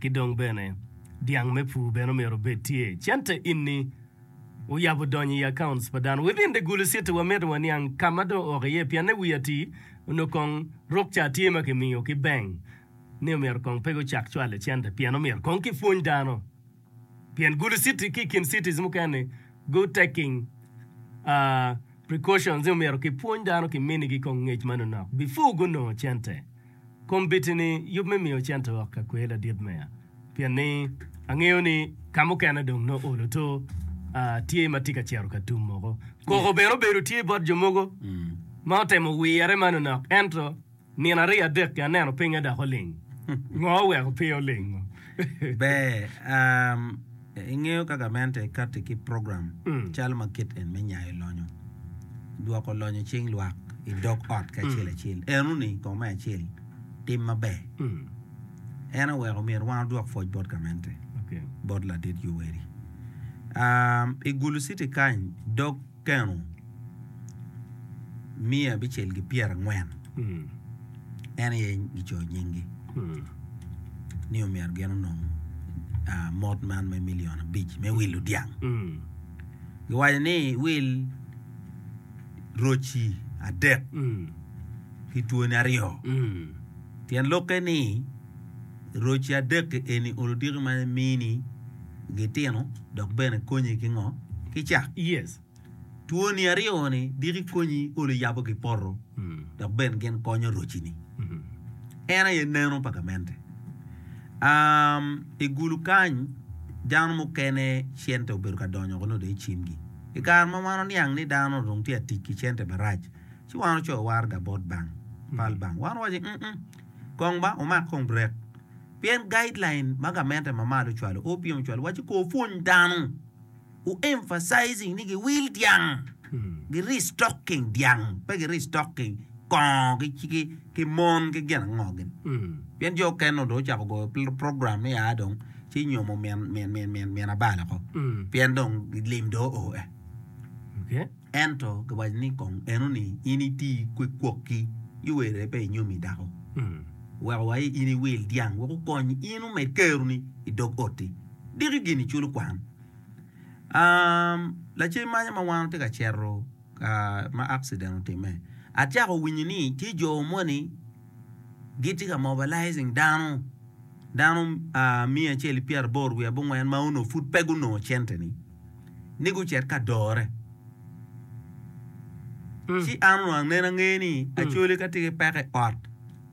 Ki dong bene, dyang me pur bene omyero obed tye. Cente enni oyabo donyo i accounts pa dano. Within the Gulu City wamito waniang ka ma dong ooko iye pienne wi atii onongo kong rok ca tye ma kimiyo ki bank ni omyero kong pe gucak cwalo cente pien omyero kong kipwony dano. pien gudo citi ki i kin cities mukene good taking precautions ni omyero ki pwony dano ki mini gi kong ngec ma nonok before gu nongo cente kom biti ni yub me miyo cente wok ka kwer ladit meya pien ni angeyo ni ka mukene dong no olo to tye ma tye ka cito ka tum moko koko bene obedo tye bot jo mogo ma otemo wire ma nonok ento Nino aryo adek-ki aneno pinye dok oling. Ngo oweko pe olingo? Ber. Ingeyo ka gamente kati ki program calo ma kit en me nyayo lonyo, dwoko lonyo i cing lwak i dog ot ki acel acel. Eno-ni kong me acel, tim maber. En oweko myero wan odwok pwoc bot gamente, bot ladit Yoweri. I Gulu city kany, dog. Lutino miya abicel ki pyera angwen en aye gicoyo nyingi ni omyero gin onong mot man me million abic me wil ludyang giwaco ni wil roci adek ki twoni aryo tyen lokke ni Roc adek-ki eni olo diki ma mini gitino dok bene konyi ki ngo? Ki cak. Yes. Twoni aryo-ni, diki konyi olo yabo ki poto dok bene gin konyo roci-ni. En aye neno pa gamente. Um, i gulu kany, dano mukene cente obedo ka donyo woko nongo dong i cimgi. I kare ma wan oniang ni dano dong tye ka tic ki cente marac, ci wan ocoyo warga bot bank, pal bank. Wan owaco ni, um, um. Kong ba wumak kong burek. Pien guideline ma gamente ma malo ocwalo o piem ocwalo waco kor pwony dano u emphasizing ni gi wil dyang, gi restocking dyang pe gi restocking kongo ki mon ki gin ango gin. Pien jo oken nongo dong ocako goyo program ni aa dong ci nyomo min abalo ko pien dong lim dong o e. Ento giwaco ni kong enoni in iti kwe kwokki i werre pe inyomi dako. Weko wa in iwil dyang wek okony in omed keroni i dog otti. Diki gini culo kwan. Um, lacen manya ma wan watye ka cito ka ma accident otimme, acako winyo ni tye jo moni gitye ka mobilizing dano, dano ah, miya acel ipyeraboro wiye abongwen ma onongo pud pe gunongo cente ni. ni gucit ka dore. Ci an onongo aneno angeya ni acoli ka tye ki peko i ot,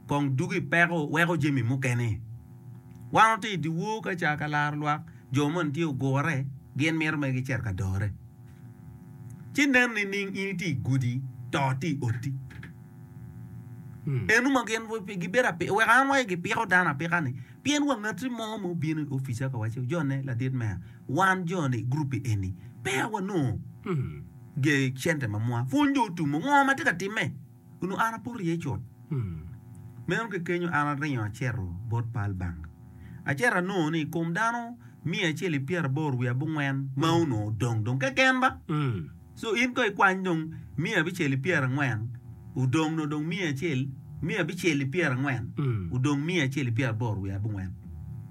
kong dugo i peko weko jami mukene. Wan watye i dyewor ka ca ka laro lwak, jo moni tye ogure, gin mito mere gicit ka dore. Ci nen nining in itye i gudi, to tye i oti? Eno ma gin gibedo apika, weko an awaco gipiko dano apika-ni, pien wa ngati mo ma obino i opica ka waco, Jonne, ladit meya, Wan jo-ni i guruppi eni peya wanongo gee cente ma mwa pwony jo otumo ngo ma tye ka timme. Onongo an apoto iye cut. Meno ki kenyo an aringo aceto bot pal banga. Aceto anongo ni i kom dano miya acel i pyeraboro wiye abongwen ma onongo odong dong keken ba. Co in ko ikwany dong miya abicel i pyera angwen odong nyo dong miya acel miya abicel i pyera angwen odong miya acel i pyera aboro wiye abongwen.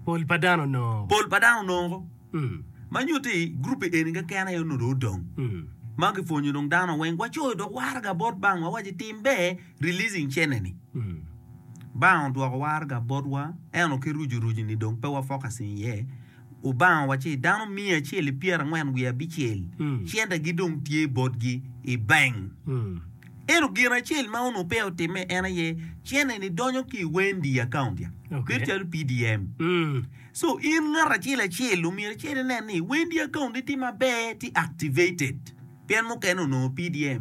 Pol pa dano onongo. Pol pa dano onongo. Mm. Ma nyuto ni group eni keken aye onongo dong odong. Mm. Ma kipwonyo dong dano weng wacoyo dok waraga bot bang wa waci tim ber releasing cene ni. Mm. Bang odwoko waraga botwa eno ki ruju ruju ni dong pe wa focusing iye. Lubanga owaco ni dano miya acel i pyerangwen wiye abicel cente gidong tye botgi i bank. Ento gin acel ma onongo peya otimme en aye cente ni donyo ki i Wendy account ya bedo calo PDM. So in ngat acel acel omyero icit inen ni Wendy account ni tye maber tye activated pien mukene onongo PDM.